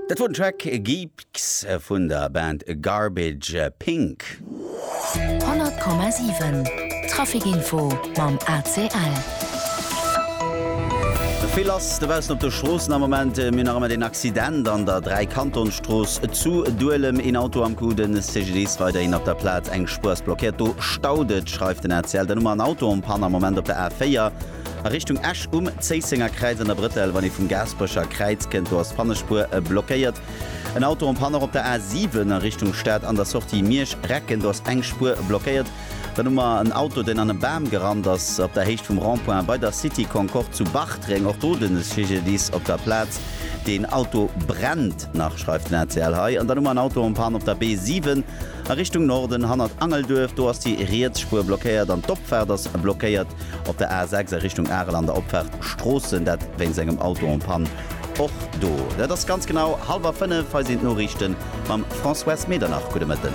Dat wor den Track Geeks vun der Band Garbage Pink. 100,7 Traficinfo mam ACL. Vill lass dobaussen op de Stroossen am Moment. Mir hunn nach ëmmer deen Accident an der Dräikantonsstrooss zu Duelem. Een Auto am Coup, den CGDIS weiderhin op der Plaz. Eng Spuer ass blockéiert, do staut et, schreift den ACL. Dann hu mer en Auto en Panne am Moment op der A4. A Richtung Esch um Zéissenger Kräiz an der Brëttel, wann ee vum Gaasperecher Kräiz kënnt, do ass d'Fannespuer blockéiert. En Auto en Panne och op der A 7 a Richtung Stad an der Sortie Miersch-Recken, do ass eng Spuer blockéiert. Dann hu mer en Auto, deen an e Bam gerannt ass op der Héicht vum Rond-point bei der City Concorde zu Bartreng. Och do den CGDIS op der Plaz. Deen Auto brennt nach, schreift den ACL hei. An dann hu mer en Auto en Panne op der B 7. A Richtung Norden, hannert Angelduerf, do ass déi riets Spuer blockéiert an d'Opfaart ass blockéiert. Op der A 6 a Richtung Arel an der Opfaart Stroossen, dat wéinst engem Auto en panne. Och do dat ass ganz genau hallwer fënnef. Hei sinn d'Noriichten mam Françoise Medernach. Gudde Mëtten.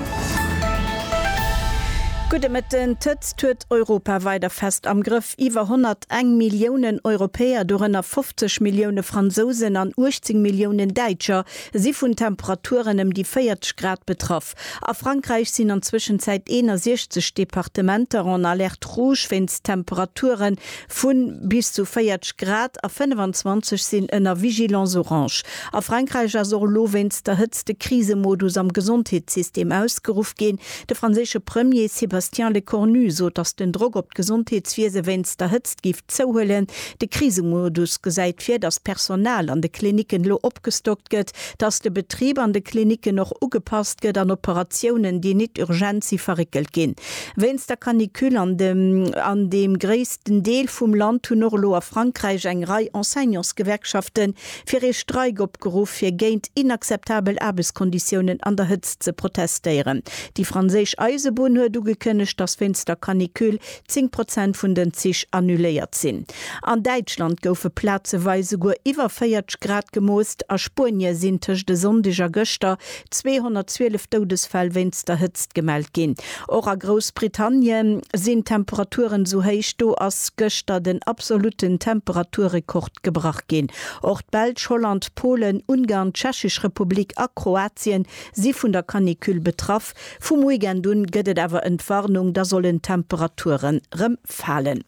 Gudde Mëtten. D'Hëtzt huet Europa weider fest am Grëff. Iwwer 101 Milliounen Europäer, dorënner 50 Millioune Fransousen an 18 Milliounen Däitscher, si vun Temperaturen ëm déi 40 Grad betraff. A Frankräich sinn an Zwëschenzäit 61 Departementer en Alerte rouge wéinst Temperature vu bis zu 40 Grad a 25 sinn ënner Vigilance orange. A Frankräich ass och elo wéinst der Hëtzt de Krisemodus am Gesondheetssystem ausgeruff ginn. De franséische Premier Sébastien Lecornu sot, datt den Drock op d'Gesondheetswiese wéinst der Hëtzt géif Zouhuelen. De Krisemodus gesäit vir, datt d'Personal an de Klinicken elo opgestockt gëtt, datt de Betrib an de Klinicken och ugepasst gëtt an Operatiounen, déi nit urgent si verréckelt ginn. Wéinst der Canicule an dem an deem gréissten Deel vum Land hunn och elo a Frankräich eng Rei Enseignantsgewerkschafte fir ee Streik opgeruff, fir géint inakzeptabel Aarbechtskonditiounen an der Hëtzt ze protestéieren. Déi franséisch Eisebunn huet ugekënnegt, datt wéinst der Canicule zéng Prozent vun den Zich annuléiert sinn. An Däitschland goufe plazeweis esouguer iwwer 40 Grad gemoost. A Spuenie sinn tëscht e Sonndeg a gëschter 212 Doudesfäll wéinst der Hëtzt gemellt ginn. Och a Groussbritannie sinn d'Temperaturen esou héich. Do ass gëschter den absolutten Temperaturrekord gebrach ginn. Och d'Belsch, Holland, Polen, Ungarn, d'Tschechesch Republik a Kroatien si vun der Canicule betraff. Vum Weekend un gëtt et awer Entwarnung, da sollen d'Temperature rem falen.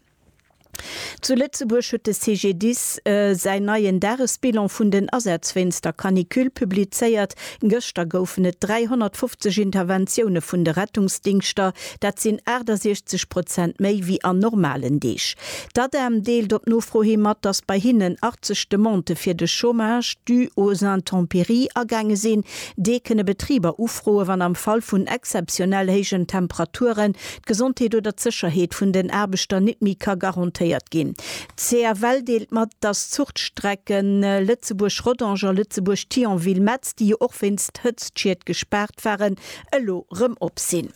Zu Lëtzebuerg huet de CGDIS säin neien Dagesbilan vun den Asätz wéinst der Canicule publizéiert. Gëschter goufen et 350 Interventioune vun de Rettungsdingschter, dat sinn 68 Prozent méi wéi an normalen Deeg. D'ADEM deelt op Nofro hi mat, datt bei hinnen 80 Demandë fir de Chômage dû aux intempéries agaange sinn. Dee kënne Betriber ufroe wann am Fall vun exzeptionell héijen Temperaturen d'Gesondheet oder d'Sécherheet vun den Aarbechter nit méi ka garantéiert ginn. D'CFL deelt mat, datt d'Zuchtstrecke Lëtzebuerg-Rodange a Lëtzebuerg-Thionville-Metz, déi jo och wéinst Hëtztschied gespaart waren, elo rëm op sinn.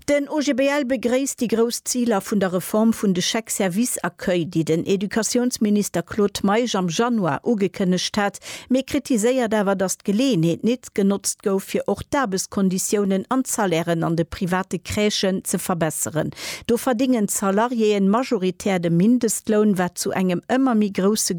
Den OGBL begréisst déi grouss Ziler vun der Reform vun de Chèques services accueil, déi den Educatiounsminister Claude Meisch am Januar ugekënnegt hat, mee kritiséiert awer, datt d'Geleeënheet nit genotzt gouf, fir och d'Aarbesconditiounen an d'Salairen an de private Crèchen ze verbesseren. Do verdingen d'Salariéeë majoritär de Mindestloun, wat zu engem ëmmer méi grousse